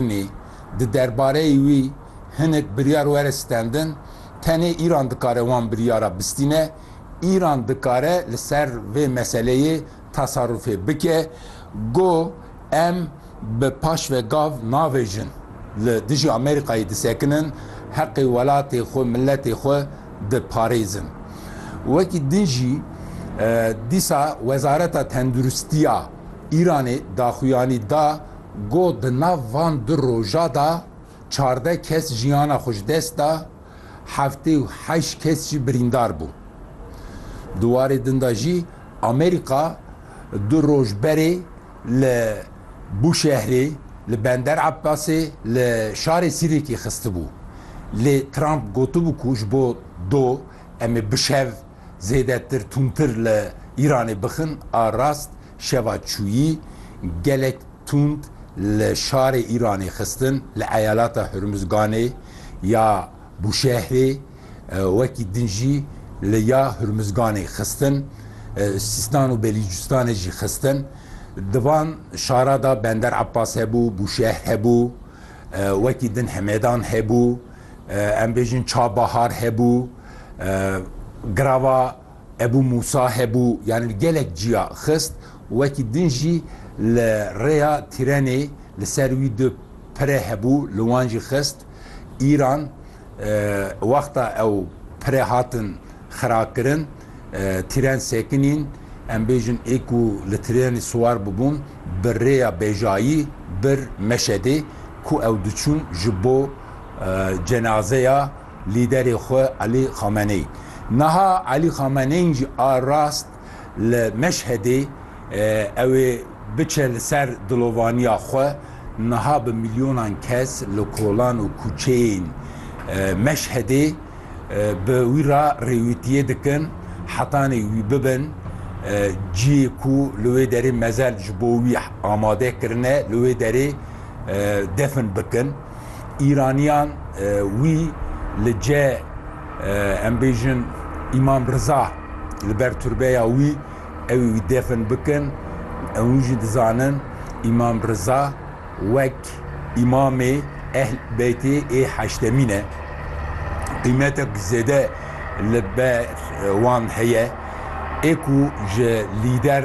Nî, di derbareyî wî hinek biryar were stendin, tenê Îran dikare wan biryara bistîne, Îran dikare li ser vê meseleyê tesarufê bike, got, Em bi paş ve gav navêjin, li dijî Amerîkayê disekinin, heqê welatê xwe, miletê xwe diparêzin. Wekî din jî dîsa Wezareta Tenduristiya Îranê daxuyanî da, Got, Di nav van du roja de çardeh kes jiyana xwe ji dest da, heftê û heşt kes jî birîndar bûn. Di warê din de jî Amerîka du roj berê li Bûşehrê, li Bender Ebbasê, li şarê Sîrêkê xistibû. Lê Trump gotibû ku ji bo do em ê bi şev zêdetir, tûntir li Îranê bixin a rast, Şeva çûyî gelek tund li şarê Îranê xistin li eyalata Hurmuzganê ya Bûşehrê wekî din jî li ya Hurmuzganê xistin, Sîstan û Belîcistanê jî xistin. Di van şara de Bender Abbas hebû, Bûşehr hebû, wekî din Hemedan hebû, em bêjin Çabahar hebû, Girava, Ebû Mûsa hebû yanî gelek ciya xist û wekî din jî li rêya tîrenê li ser wî du pire hebû li wan jî xist. Îran wexta ew pire hatin xirakirin tîren sekinîn em bêjin ê ku li tîrenê siwar bibûn bi rêya bejayî bir Meşedê ku ew diçûn ji bo cenazeya Lîderê xwe Elî Xameneî. Niha Elî Xameneîn jî a rast li Meşhedê ew ê biçe li ser dilovaniya xwe, niha bi milyonan kes li kolan û kûçeyên Meşhedê bi wî re rêwîtiyê dikin, hetanê wî bibin ciyê ku li wê derê mezel ji bo wî amade kirine, li wê derê defn bikin. Îraniyan wî li ce em bêjin Îmam Riza li ber turbeya wî ew ê wî defn bikin. Hûn jî dizanin Îmam Riza wek Îmamê Ehl Beytê ê heştemîn e. Qîmetek zêde li ber wan heye ê ku ji lîder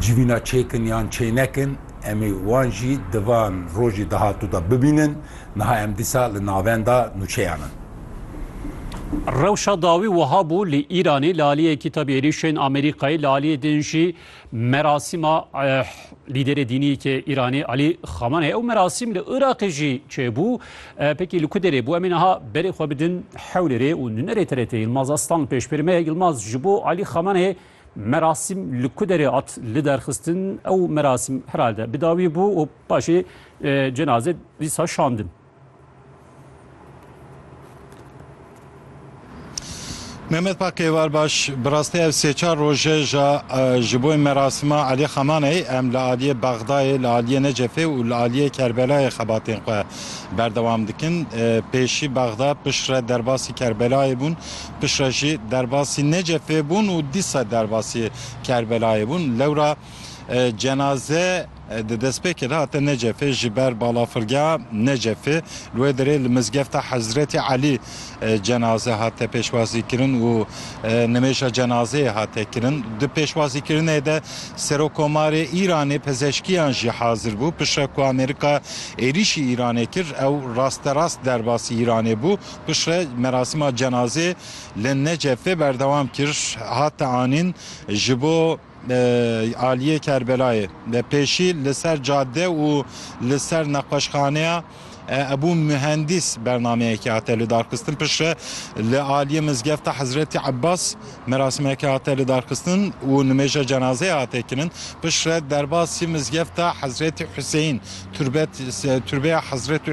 civîna çêkin yan çênekin em ê wan jî di van rojê dahatû de bibînin, niha em dîsa li navenda nûçeyan in. Rewşa dawî wiha bû, li Îranê li aliyê Kîtabî Êrîşên Amerîkayê, li aliyê din jî merasîma lîderê dînî ke Îranê Alî Xamaneyê ew merasîm li Iraqê jî çêbû. Pekî li ku derê bû? Em ê niha berê xwe bidin Hewlêrê û nûnerê TRT'ê Yilmaz Aslan pêşberî me ye. Yilmaz ji bo Alî Xamaneyê Merasîm li ku derê hat liderxistin? Ew merasîm herhalde bi dawî bû û paşê cenazê dîsa şandin. Mehmet Pak Kêvar Baş, bi rastî ev sê çar roj e ja ji bo merasîma Elî Xamaneyî em li aliyê Bexdayê, li aliyê Necefê û li aliyê Kerbelayê xebatên xwe berdewam dikin. Pêşî Bexda piştre derbasî Kerbelayê bûn Piştre jî derbasî Necefê bûn û dîsa derbasî Kerbelayê bûn. Lewra cenaze di destpêkê de hate Necefê ji ber balafirgeha Necefê. Li wê derê li mizgefta Hezretî Elî cenaze hate pêşwazîkirin û nimêja cenazeyê hate kirin. Di pêşwazîkirinê de Serokkomarê Îranê, pizeşkiyan jî hazir bû. Piştre ku Amerîka êrîşî Îranê kir ew rasterast derbasî Îranê bû. Piştre merasîma cenazê li Necefê berdewam kir, hat anîn ji bo aliyê Kerbelayê. Pêşî li ser cadde û li ser nexweşxaneya Ebû Muhendîs bernameyekê hate lidarxistin. Piştre li aliyê mizgefta Hezretî Ebas merasîmeke hate lidarxistin û nimêja cenazeyê hate kirin. Piştre derbasî mizgefta Hezretî Huseyîn, turbet turbeya Hezretî